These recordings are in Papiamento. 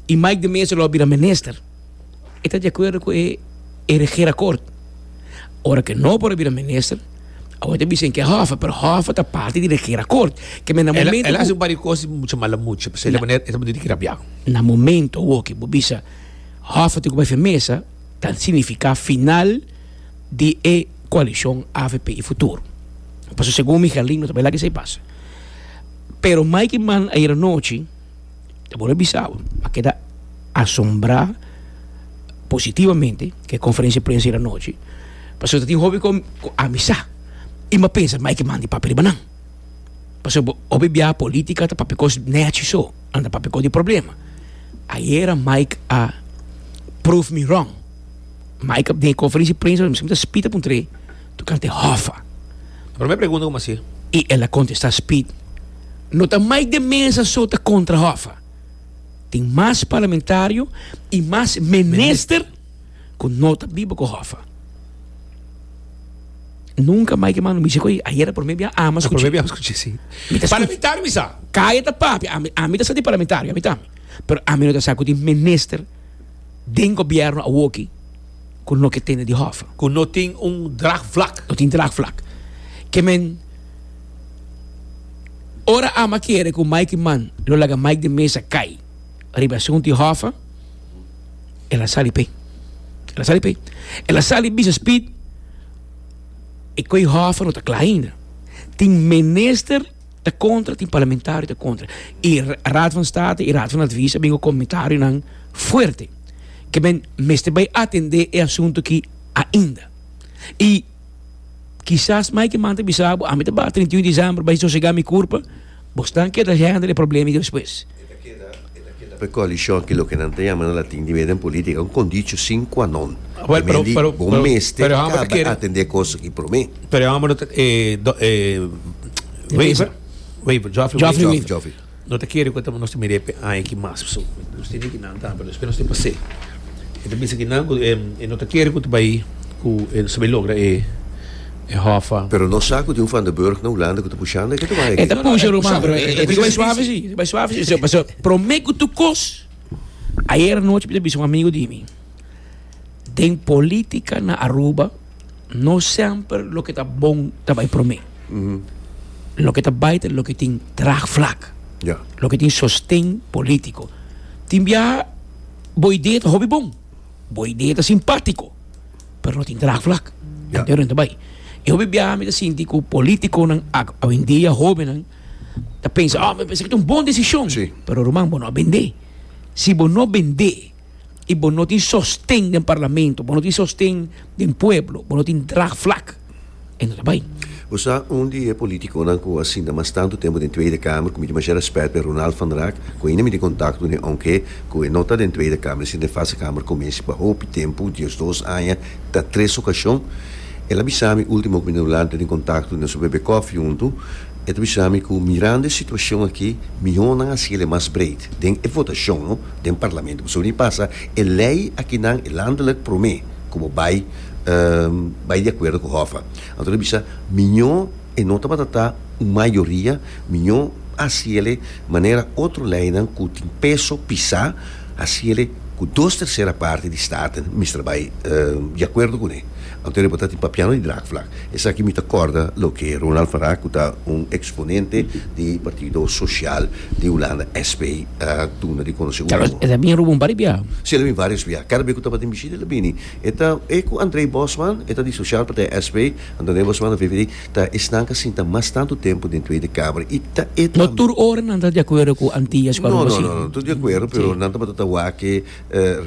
y Mike de Meza lo a bira minister e ta di acuerdo cu e e regeerakkoord ora cu no por a bira minister awor ta bisa enke Hoffa pero Hoffa ta parte di regeerakkoord ke men na momento cu el a haci un par di cosas di mucha mala mucha pasobra di e manera el ta bendito di grabiao na momento awor ke bo bisa Hoffa tin cu bay firmeza ta significa final di e coalicion avp y futuro pasobra segun mi Herlin no ta bay laga esey pasa pero Mike y Mike ayer anochi. Ta bon a bisa bo, a keda asombrá positivamente ku e konferensia prensa di anochi, pasobra tin hopi ku a amisá i mi a pensa ai ke manda e papia riba nan, pasobra hopi biaha polítika ta papia kos nèchi so, a no ta papia kos di problema. Ayera Mike a prove mi wrong, Mike den e konferensia prensa miskien ta spita puntre tur kante hòffa. Prome pregunta kuma si. I el a kontestá spid, No ta mai den mesa so ta kontra Hoffa. Tin mas parlamentario i mas minister ku no ta biba ku Hoffa. Nunka mai ke mano mi siko ei, ayera prome bia ami a skuch'é. Prome bia ami a skuch'é, si. Parlamentario mi sa. Kaya ta papia, ami ami ta sa di parlamentario, ami ta. Pero ami no ta sa ku tin minister den gobièrnu awoki. ku no ke tene di hòfè. Ku no tin un draagvlak. No tin draagvlak. Ke men ora ama kere ku Mike Mann lo laga Mike den mesa kai riba e asuntu di hòfè, el a sali p'ei. El a sali p'ei. El a sali bisa Speed e koi hòfè no ta kla ainda. Tin minister. Ta kontra, tin parlamentario ta kontra. I Raad van State i Raad van Advies a bin ku komentarionan fuerte ke men mester bai atendé e asuntu aki ainda. I kisas mai ke man ta bisa bo, ami ta ba treintiun desèmber bai sosegá mi kurpa, bosnan keda hèndel e problema despues. P'e koalishon ke loke nan ta yama na latin di meden politika un kondicho sin kua non. Well, pero, Mendi pero, bo pero, mester pero Hammer kaba kere, atendé kos aki promé. pero Hammer no ta, eh, do, eh, Wever, Wever. Wever, Joffrey Joffrey Wever. Joffrey, Joffrey. No te kere kota nos te miré pe ai ki mas so. Nos te ki nan tan, pero después nos te pasé. E te bisa ki nan ku eh, e no te kere ku te bai ku e sabi logra e e hòffa. Pero no sa ku tin un Van der Burg na Hulanda ku ta pushando, e ke ta bai aki. E ta pusha ruman, pero e ta bai suave si, e ta bai suave si. Pasobra so, promé ku tur kos, ayer anochi mi ta bisa un amigu di mi, den polítika na Aruba no semper loke ta bon ta bai promé. Loke ta bai ta loke tin draagvlak, Ja. loke tin sosten polítiko. Tin biaha bo idea ta hopi bon. Bo idea ta simpático, pero no tin draagvlak. Ya. Entendé rond ta bai. E hopi biaha mi ta sinti cu politiconan ac, awendia hobennan, ta pensa, ah, mi pensa cu ta un bon decision. Sí. Pero ruman, bo no a bendé. Si bo no bendé y bo no tin sosten den parlamento, bo no tin sosten den pueblo, bo no tin draagvlak, e no ta bai. Bo sa un di e politiconan cu a sinta mas tanto tempo den Tweede Kamer cu mi tin masha respet pa e Ronald van Raak cu ainda mi tin contacto den aunke cu e no ta den Tweede Kamer e sinta den First Kamer cu mi pa hopi tempo diesdos aña ta tres ocasion el a bisa mi ultimo cu mi tin hoblando tin contacto nos a bebe cofi hunto e ta bisa mi cu mirando e situacion aki miho nan a haciele mas breed den e votacion no den Parlamento pasobra mi pasa e ley akinan e landelijk prome cu bo bai bai di akuerdo ku Hoffa. Anto lo bisa, Miñó e no tabata ta un mayoria, miñó hasi el'e manera otro leinan ku tin peso pisá hasi el'e ku dos tersera parti di staten mester bai di akuerdo kuné. Anto e tabata tin papiando di draagvlak. Esaki mi ta kòrda loke Ronald van Raak ku ta un eksponente di Partido Sosial di Hulanda, SP, a duna di konosé último. Tabata e bin Ruben Baribia? Sí, el a bin vários bia. Kada be ku tabata tin bishita el a bini. E ta e cu André Bosman, e ta di Sociaal Partij SP. André Bosman na VVD ta esnan ca sinta mas tantu tempu den Tweede Kamer y ta e tambe. No tur ora nan ta di acuerdo cu Antillas pa rumbo asina. No, no, no, tur di acuerdo, pero nan tabata ta wake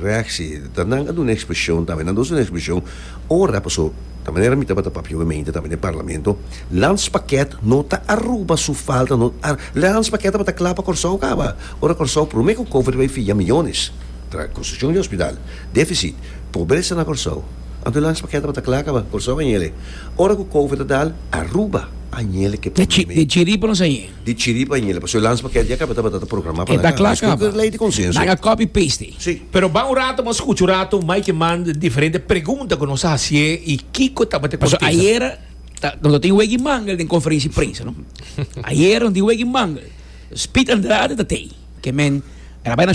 reactie. Ta nan a duna expresión tambe. Nan ta usa nan expresión ora, paso ta manera mi tabata papia we mente tambe den Parlamento, Lans Pakket no ta Aruba su falta, no ta Lans Pakket tabata cla pa Corsou caba. Ora Corsou prome cu Cover ta bay fia millones tra construccion di hospital. Deficit, Pobresa na Kòrsou, Ambulance pa keda pa ta kla kaba Kòrsou a nyele Ora ku Covid a dal Aruba a nyele ke pandemia Di chiri pa nos a nyele Di chiri pa nyele Pasó Lans pa keda ya kaba tabata ta programa pa nan kaba Nos kiko ke lei di konsenso Nan a copy paste Si. Pero ban un rato bo skucha un rato mai ke man di diferente pregunta ku nos a hasié i kiko tabata e kontesta. Paso ayera ta nos tin wega i mangel den konferensia di prensa no ayera nos tin wega i mangel Speed Andrade ta tei ke men el a bai na.